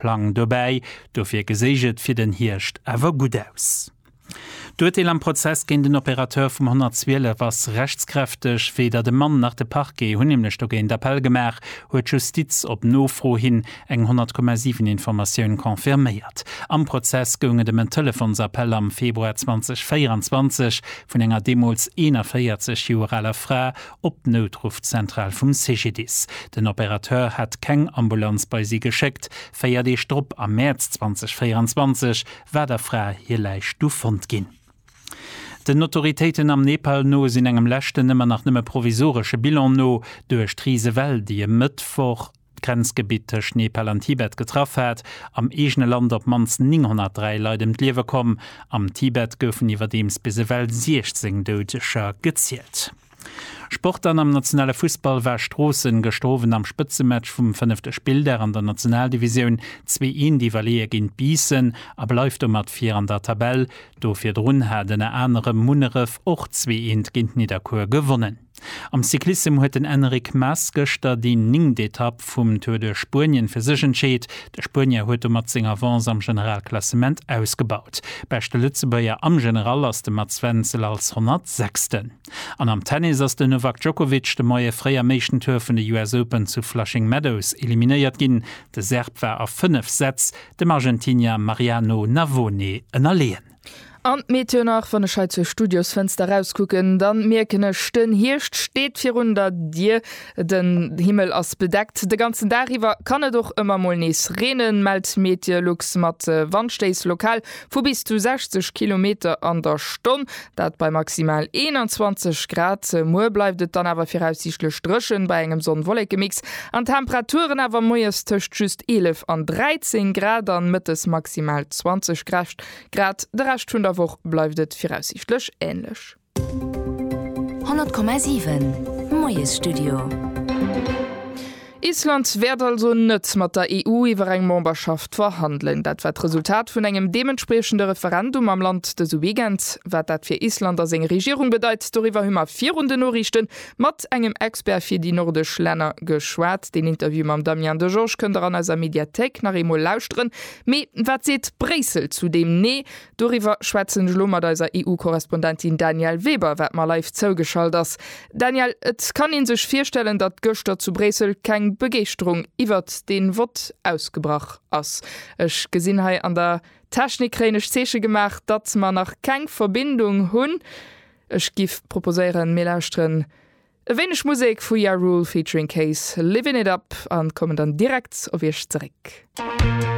Plang dobäi, dofir geséich et fir den Hierscht awer gutt aus. D'Urteel am Prozess géint den Opérateur vum 112 ass rechtskräfteg. Weder de Mann nach de Parquet hunn nämlech dogéint Appell gemaach, huet d'Justiz op Nofro hin eng 100,7 Informatioun confirméiert. Am Prozess goung et ëm en Telefonsappell am Februar 2024 vun enger deemools 41 Joer aler Fra op d'Noutruffzentral vum CGDIS. Den Opérateur hat keng Ambulanz bei si geschéckt. Véier Deeg drop, am Mäerz 2024, war der Fra hir Läich du fonnt ginn. Den Autoritéiten am Nepal no sinn engem leschten, ëmmer nach nëmme provisoresche Bilan no, duerch d'Risewell, déi e Mëttwoch, d'Grenzgebitt tëscht Nepal an Tibet getraff hat. Am eegene Land op d'mannst 903 Leit ëm d'Liewe komm. Am Tibet goufen iwwerdeems bis ewell 16 Doudeger gezielt. Sport an Am nationale Fussball war Stroossen gëschter Owend am Spëtzematch vum fënnefte Spilldag an der Nationaldivisioun zwee Eent iwwerleeë géint Biissen a bleift domat vir an der Tabell. Do virdrun hat ënner anerem Munneref och zwee Eent géint Nidderkuer gewonnen. Am Cyclissem huet den Enric Mas gëschter déi ningt Etapp vum Tour de Spuenien fir sech entscheet. De Spuenier huet domat seng Avance am Generalklassement ausgebaut. Beschte Lëtzebuerger am General ass de Mats Wenzel als 106. An am Tennis ass den Novak Djokovic de Moie fréi am éischten Tour vun de US Open zu Flushing Meadows eliminéiert ginn. De Serb war a 5 Sätz dem Argentinier Mariano Navone ënnerleeën. An d'Meteo nach, wann ech hei zur Studiosfënster rauskucken, da mierken ech, den Hierscht steet virun der Dier. Den Himmel ass bedeckt, de ganzen Dag iwwer kann et och ëmmer mol nees reenen, mellt Meteolux, mat Wandstéiss lokal vu bis zu 60 Kilometer an der Stonn, dat bei maximal 21 Grad. Muer bleift et dann awer viraussiichtlech dréchen, bei engem Sonn-Wollekemix, an d'Temperaturen awer moies tëscht just 11 an 13 Grad an mëttes maximal 20 Grad. Grad de Rescht vun der Woch bleift et viraussiichtlech änlech. 100,7 Moiesstudio. Island wäert also net mat der EU iwwer eng Memberschaft verhandelen. Dat war d'Resultat vun engem deementspriechende Referendum am Land dëse Weekend. Wat dat fir Island a seng Regierung bedeit, doriwwer hu mer virun den Noriichte mat engem Expert fir déi nordesch Länner geschwat. Deen Interview mam Damien Degeorge kënnt der an eiser Mediathéik nach eemol lauschteren. Mee wat seet Bréissel zu deem Nee? Doriwwer schwätzen ech elo mat eiser EU-Korrespondentin Danièle Weber, wat mer live zougeschalt ass. Danièle, et kann ee sech virstellen, datt gëschter zu Bréissel keng Begeeschterung iwwert dee Vott ausgebrach ass. Ech gesinn hei an der Technik kréien ech Zeeche gemaach, datt mer nach keng Verbindung hunn. Ech giff proposéieren, mir lauschteren e wéineg Musek vu Ja Rule featuring Case, Livin' It Up, a kommen dann direkt op iech zeréck.